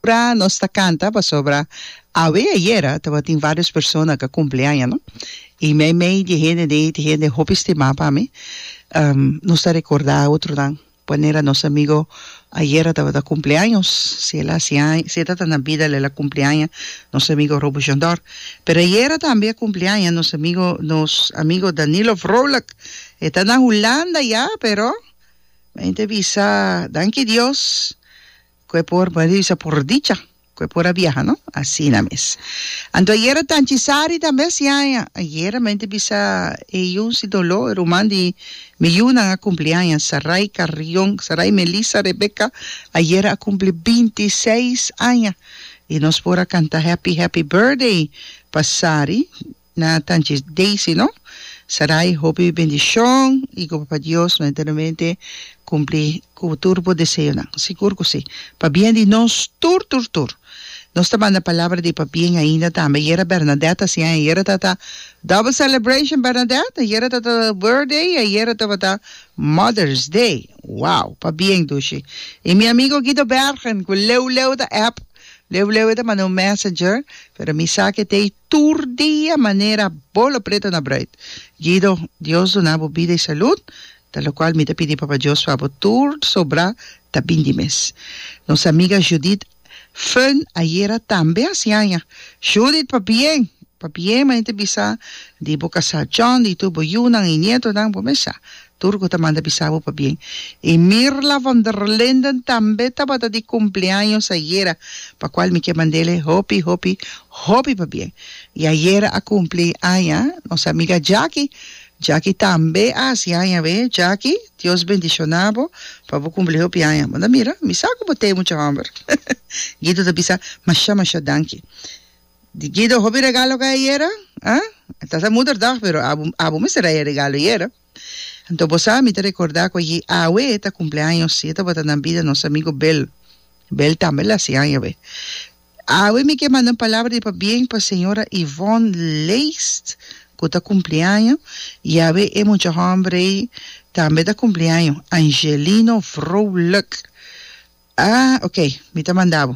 Ora nos ta canta pasobra awe ayera tabatin varios persona cu a cumpli aña no y meimei di hende de ey ta hende hopi stima pa mi nos ta recorda otronan. Pwanera nos amigo ayera tabata kumpli años, si el a hasi aña, si e ta ta na bida el a kumpli aña, nos amigo Robo Jondor. Pero ayera tambe a kumpli aña nos amigo, nos amigo Danilo Vrolijk. E ta na Hulanda ya, pero men ta bisa, danki Dios, Cu e por barisha por dicha. Cu e por a biaha, no? Asina mes. Anto ayera tanchi sari ta mes yaña. Ayera mente bisa e yu si dolo, e ruman di mi yunan a cumpli aña, Sarai Carrion, Sarai Melissa Rebecca, ayera a cumpli binti i seis aña. I nos por a canta happy happy birthday pa Sari. Na tanchi Daisy no. Sarai hopi bendicion y cu Papa Dios lo eternamente cumpli cu tur bo deseonan. Sigur cu si. Pa bien di nos tur tur tur. Nos ta manda palabra di pa bien ainda tambe. Ayer a Bernadette a siña, ayer tabata double celebration Bernadette, ayer tabata birthday y ayer tabata Mother's day. Wow! Pa bien dushi. Y mi amigo Guido Bergen cu leu leu ta app, leu leu e ta manda un messenger, pero mi sa cu e t'ei. tur dia manera bo lo preta na bruid. Guido, Dios duna bo bida y salud, ta locual mi ta pidi Papa Dios pa bo tur sobra ta bin di mes. Nos amiga Judith Fun ayera tambe a haci aña. Judith pa bien, pa bien manain ta bisa di bo casal John y tur bo yunan y nietonan bo mes sa Tur ku ta manda bisa bo pabien. I Mirla van der Linden tambe tabata di kumpleaños ayera, pa kual mi ke mand'ele hopi, hopi, hopi pabien. I ayera a kumpli aña nos amiga Jaki. Jaki tambe a hasi aña awé. Jaki, Dios bendishoná bo pa bo kumpli hopi aña. Bo ta mira? Mi sa ku bo t'e mucha hòmber. Guido ta bisa, Mashá, mashá danki. Di Guido hopi regalo ka ayera? Ah? Ta sa moeder dag pero abo abo mester a e regalo ayera. Anto bo sa mi ta recorda cu ayi awe ta cumpleaños y e tabata na bida nos amigo Bel. Bel tambe la haci aña awe. Awe mi ke manda un palabra di pabien pa señora Yvonne Leest cu ta cumpli aña y awe e mucha hombre ey tambe ta cumpli aña, Angelino Vrolijk. Ah, ok, mi ta manda bo.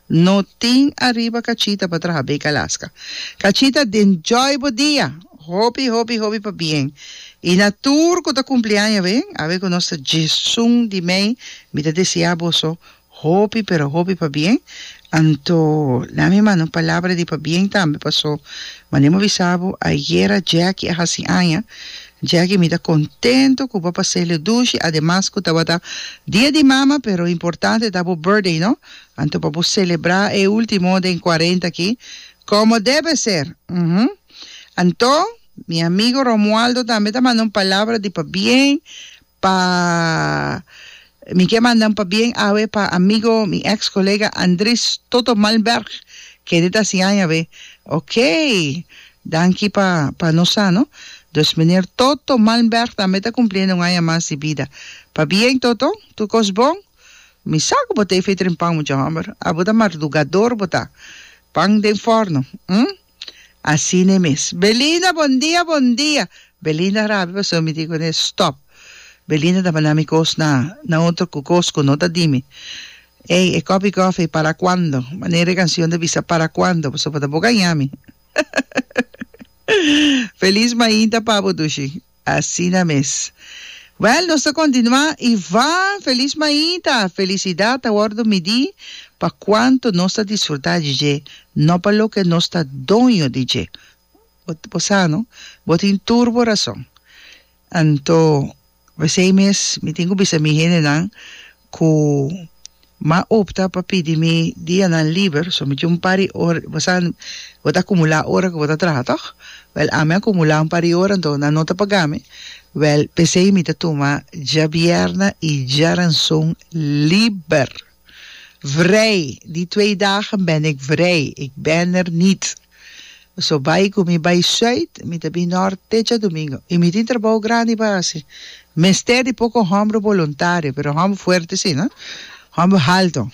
No tin ariba cachita pa traha bek Alaska. Cachita den joy bo dia! Hopi hopi hopi pa bien y na tur cu ta cumpliaña ben awe cu nos ta djesun di mei mi ta desea boso hopi pero hopi pa bien anto na mi manda un palabra di pa bien tambe paso mane mo bisa bo ayera Jackie a haci aña Jackie mi ta contento cu bo a pasele dushi ademas cu tabata dia di mama pero importante ta bo birthday no Anto pa bo celebrá e último den cuarenta aki como debe ser. Uhumm. Anto, mi amigo Romualdo tambe ta manda un palabra di pabien pa Mi ke manda un pabien awe pa amigo, mi ex colega Andris Toto Malmberg, kende ta hasi aña awe. Okey. Danki pa pa nos sa, no. Dus meneer Toto Malmberg tambe ta cumpliendo un aña mas di bida. Pabien Toto, tur cos bon? Mi sa ku bo ta e efeito den pan, mucha hòmber. Abo ta mardugador bo ta. Pan den fòrno, hm? Asina e mes. Belinda, bondia, bondia! Belinda rabia pasobra mi di kuné, Stòp! Belinda ta bana mi kos na, na otro ku kos ku no ta di mi. Ey, e kòpi kòfi, para kuando? Manera e kansion ta bisa, para kuando? Pasobra ta bo gaña mi. Felis mainta pa bo, Dushi. Asina mes. Well, nos ta continua y va! Feliz maita! Felicidad ta wordo midi pa cuanto nos ta disfruta di dje, no pa loke nos ta doño di dje. Bo, bo sa no? Bo tin tur bo razon. Anto, p'esei mes mi tin cu bisa mi hendenan, cu ma opta pa pidi mi dianan liber, so mi tin un par di ora, bo sa, bo ta acumula ora cu bo ta traha, toch? Wel, ami a cumula un par di ora, enton nan no ta paga mi, wel, p'esey mi ta tuma djabièrna y djaranson liber, vrij! Die twee dagen ben ik vrij, ik ben er niet. So bai ku mi bai Zuid, mi ta bin Nort te djadumingu i mi tin trabou grandi pa hasi. Mester di poko hòmber boluntario, pero hòmber fuerte si, no hòmber haltu.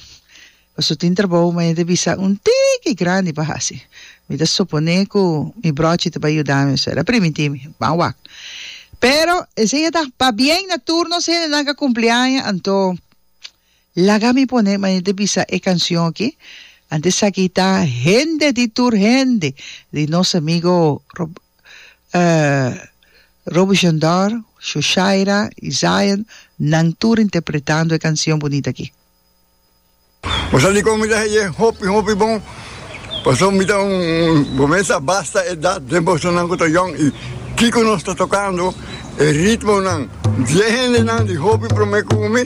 Pasobra tin trabou un hende bisa un tiki grandi pa hasi. Mi ta suponé ku mi bròchi ta bai yuda mi, so e ta primintí mi, ban wak. Pero esei a taha pabien na tur nos hendenan ku a kumpli aña, anto Laga mi pone manera bisa e cancion aki. Antes esaki ta hende di tur hende di nos amigo Rob, uh, Robichon Dor, Shoshaira y Zion, nan tur interpretando e cancion bunita aki. Mosa dikon mi ta heye hopi hopi bon paso mi ta un comensa basta edad den bosonan ku ta yong i kiko nos ta tokando e ritmonan diez hendenan di hopi prome ku mi.